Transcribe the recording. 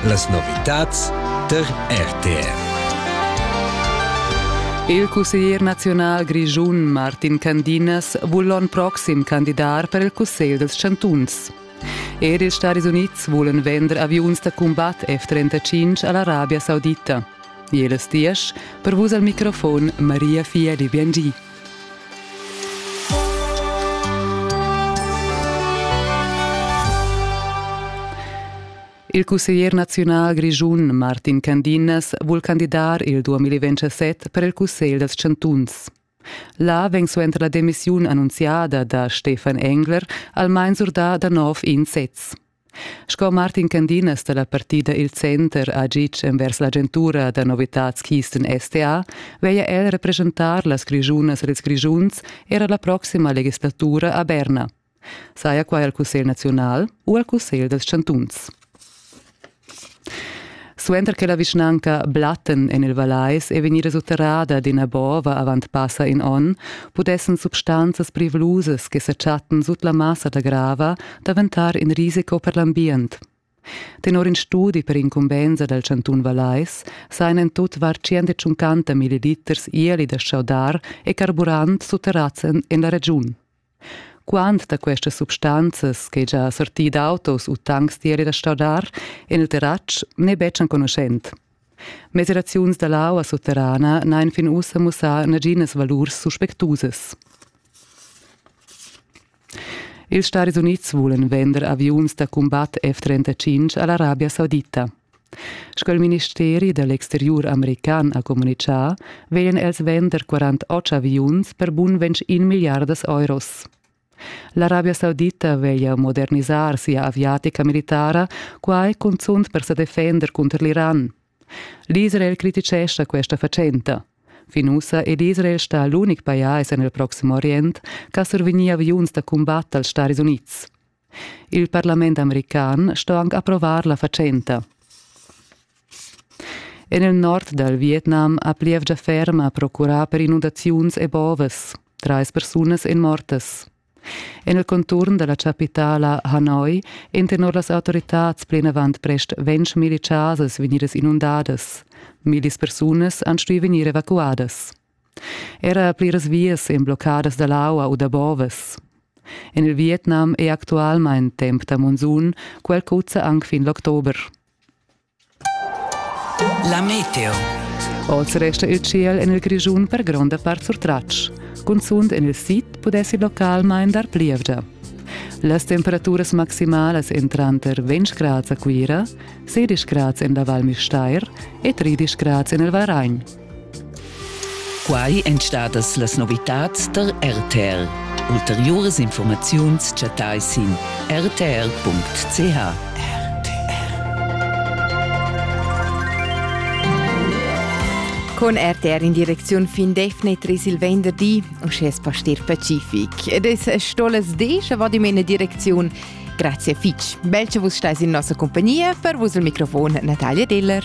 Las novitads tar RTR. Il cusseglier naziunal grischun Martin Candinas vul l'onn proxim candidar per il Cussegl dels chantuns. Er ils Stadis Unids vulen vender aviuns da combat F-35 a l'Arabia Saudita. Jeles Diesch, per vus al microfon Maria Fieli Biangi. Il cusseglier naziunal grischun Martin Candinas vul candidar il 2027 per il cussegl dals chantuns. Là vegn suenter la demissiun annunziada da Stefan Engler almain surdà da nov in sez. Sco Martin Candinas da la partida Il Center ha gitg envers l'agentura da novitads Kisten STA, veglia el represchentar las Grischunas ed ils Grischuns era la proxima legislatura a Berna. Saja quai al Cussegl naziunal u al Cussegl dals chantuns. Suenter che la vischnanca Blatten en il Vallais è vegnida sutterrada d'ina bova avant passa in onn, pudessan substanzas privlusas che sa chattan sut la massa da grava daventar in risico per l'ambient. Tenor in studi per incumbensa dal chantun Vallais sajan en tut var 150 milliliters ieli da chaudar e carburant sutterrads en la regiun. Quant da questas substanzas che già sortì d'autos u tancs d'ieri da stradar en il terratsch n'è betg enconuschent. Mesiraziuns da l'aua sutterrana n'han fin ussa mussà naginas valurs suspectusas. Ils Stati Unids vulan vender aviuns da cumbat F-35 a l'Arabia Saudita. Sco il ministeri da l'exteriur american ha communitgà, vegnan els vender 48 aviuns per bun ventg in milliardas euros. L'Arabia Saudita veglia modernisar sia aviatica militara, quai cunzunt per sa defender cunter l'Iran. L'Israel criticescha questa fatschenta. Fin ussa è l'Israel stà l'unic pajais en il Proxim Orient ch'ha survegnì aviuns da cumbat dals Staris Unids. Il parlament american sto anc approvar la fatschenta. En il nord dal Vietnam ha plievgia ferma procurà per inundaziuns e bovas. Trais persunas èn mortas. En il conturn da la chapitala Hanoi èn tenor las autoritads plinavant prest ventg milli chasas vegnidas inundadas. Millis persunas han stuì vegnir evacuadas. Era pliras vias ein bloccadas dall'aua u da bovas. En il Vietnam è actualmein temp da monsun, quel cuzza anc fin l'october. La meteo. Oz resta il ciel en il Grischun per gronda part surtratg. Cunzunt en il sid pudessi localmein dar plievgia. Las temperaturas maximalas en tranter 20 grads a Cuira, 16 grads en la Val Müstair e 13 grads en il Varagn. Quai èn stadas las novitads tar RTL. Ulteriuras informaziuns chattai sin rtr.ch. Con RTR in direcziun fin defnetra il venderdi, uschè es pastir pacific. Ed es stolas descha vado in mena direcziun. Grazie fitch. Bel che vus stais in nossa compagnia, per vus il microfon Natalia Diller.